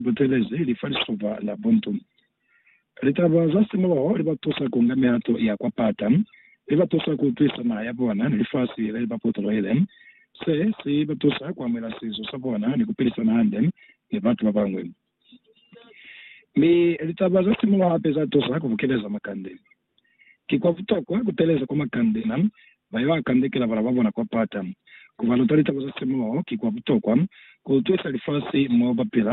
butelezi li fa lisupa la buntu. Litaba za simoho li ba tusa ku nga mihato ya kwa pata, li ba tusa ku utwisa naha ya bona ni lifasi le li ba potolohile. Se si ba tusa ku amuhela sizo sa bona ni ku pilisana hande ni batu ba bañwi. Mi litaba za simoho hape za tusa ku bukeleza makande. Ki kwa butokwa ku teeleza kwa makandela ba yo a kandekela bana ba bona kwa pata. Ku ba luta litaba za semuluho ki kwa butokwa ku utwisa lifasi mo ba pila.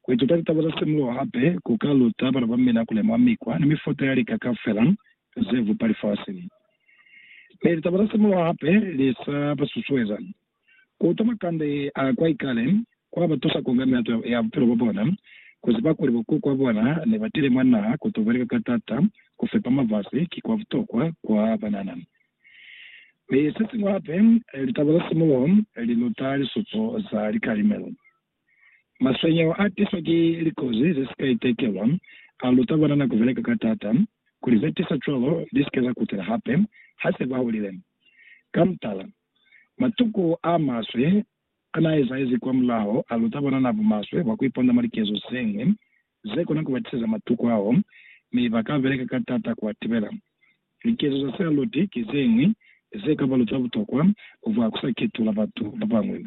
Ku ituta litaba za semuluho hape ku ka luta bana ba mina ku lemuha mikwa ni mifuta ya lika kaufela ze bupa lifasi. Mi litaba za semuluho hape li sa ba susueza Kuta makande a kwa ikale kwa ba tusa ku nga mihato ya bupilo bwa bona, ku ziba kuli bo kuku ba bona ne ba tile mwa naha ku to beleka ka t'ata. Ku fepa mafasi ki kwa butokwa kwa banana. Mi se siñwi hape, litaba za simuluho li luta lisupo za likalimelo. Maswenyeho a tiswa ki likozi ze si ka itekelwa a luta banana ku beleka ka t'ata kuli ze tisa cwalo li si ke za kutela hape ha se ba hulile. Ka mutala, Matuku a maswe a n'a ezahezi kwa mulaho a luta banana bumaswe bwa ku iponda mwa likezo ze ñwi ze kona ku ba tiseza matuku ao, mi ba ka beleka ka t'ata ku a tibela. Likezo za Sealoti ki ze ñwi ze ka ba luta butokwa bwa ku sa ketula batu ba bañwi.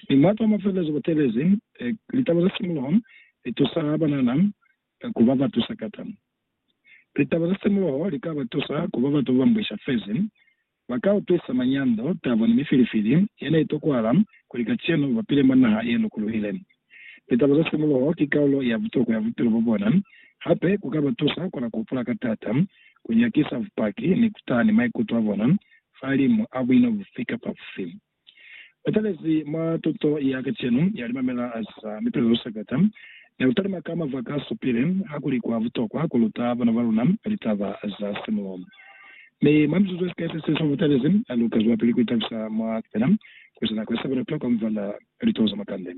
Mi mwa twa mafelelezo bo teelezi, litaba za simuloho li tusa banana ku ba batu sakata. Litaba za simuloho li ka ba tusa ku ba batu ba ba mbwisha fezi Ba ka utwisa manyando, tabo, ni mifilifili ye ne i tokwahala kuli kacenu ba pile mwa naha ye lukuluhile. Litabo za simuluho ki kaulo ya butokwa ya bupilo bwa bona. Hape ku ka ba tusa ku la ku hupula ka taata, ku nyakisa bupaki, ni ku taha ni maikuto a bona fahalimu a buino bufi kapa bufi. Ba talezi mwa tuto ya kacenu ya limamela za mipelezo ku sakata ne ku talima ka mava ka supile hakuli kwa butokwa ku luta bana ba luna litaba za simulo. Mi mwa mizuzu ye sikai se si shumi, mutalezi a lu ka zwelapili ku itabisa mwa kupena ku eza nako ye sa bona tokwa mubala litulo za makande.